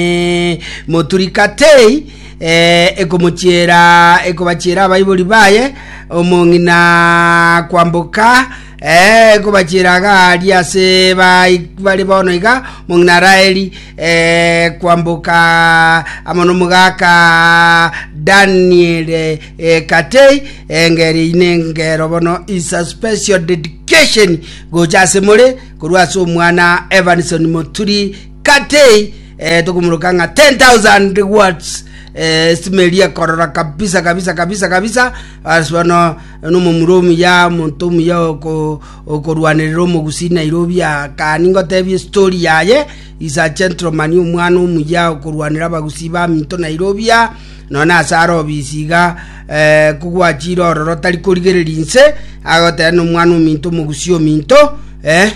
Eh, moturikatei eh, ekomochiera ekobachiera abaibori baye omong'ina kwamboka eh, ekobachiera agari ase bai- bare bono iga omong'ina raeli eh, kwamboka amo nomogaka daniel eh, katei engeri ine ngero bono is a special dedication gocha ase more korwa ase omwana evanson moturi Kate eh, tokomuroka ng'a 10,000 watts eh, esimeri ekorora kabisa kabisa kabisa kabisa ase bono nomomura omuya monto omuya oko- okorwanerera omogusi nairobi akani ngotebia estori yaye is a gentleman omwana omuya okorwanera abagusi baminto nairobia none ase are obisi iga eh, kogwachire ororo tari korigereria inse agoteba nomwana ominto omogusi ominto eh,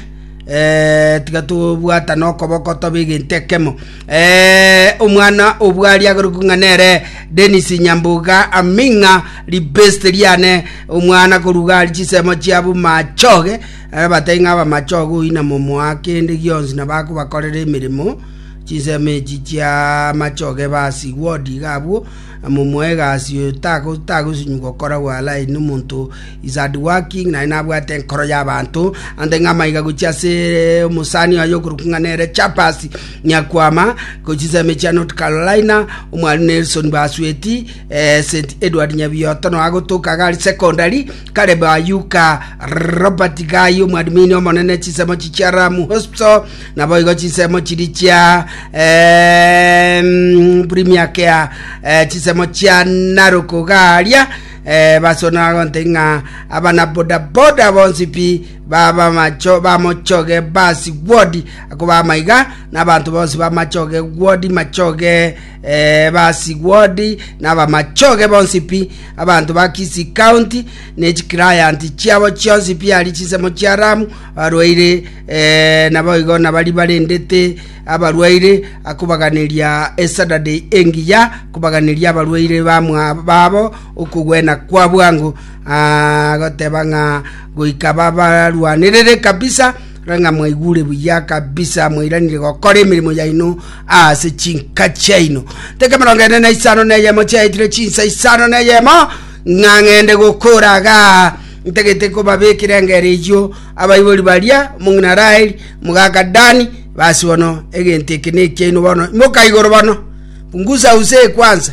Eh, tiga tobwatane okoboko tobe egento ekemo Eh, omwana obwari ageruku ng'a nere denis nyambuga aming'a ribest riane omwana koruga ari chisemo chiabu machoge Eh, batari ng'a abamachoge oina momoa kende gionsi na bakobakorera emeremo chinsemo echi chia machoge basigwa odiga abwo Momoe egasi oyo tagosunywa gokora gw'Alai nomonto is hard working, naende nabwate enkoro y'abanto. Ante ng'a amaiga gochia ase omosani oye okorokwa ng'a nere Chappers Nyakwama, gochia ase emechie ya North Carolina, omwarimu Nelson Basweti, eh, St. Edward Nyabiyoto nonya agotoka iga aria secondary, Caleb Ayuka, Robert Gai, omwadmini omonene, chinsemo chichia Ramu Hospital, Naboigo chinsemo chiri chia eh, mm, buri miaka ya eh, chinsemo chia naruku garia eh, basonora gonte ng'a abana bodaboda bonsi pi baba macho bamochoge basi gwodi ako bamaiga n'abantu bonsi bamachoge gwodi machoge eh, basi gwodi n'abamachoge bonsi pi abanto ba Kisii County ne chicliant chiabo chionsi pi ari chinsemo chia Ramu Abarwaire naboigo nabaria barendete abarwaire, akobaganeria esadadei engiya, akobaganeria abarwaire babo okogwena kwa bwango, agoteba ng'a goika babarwanerere kabisa, ng'a mwaigure buya kabisa, mwairanire gokora emeremo yaino ase chinka chiaino. Teka emerongo ene na isano na eyemo chiaetire chinsa isano na eyemo, ng'a ng'ende gokora igaa Ntagete kobabekera engero eyio abaibori baria, omong'ina Raheli, omogaka Dani, basi bono egento eke nekiaino bono. Imoka igoro bono, pungusa use kwanza.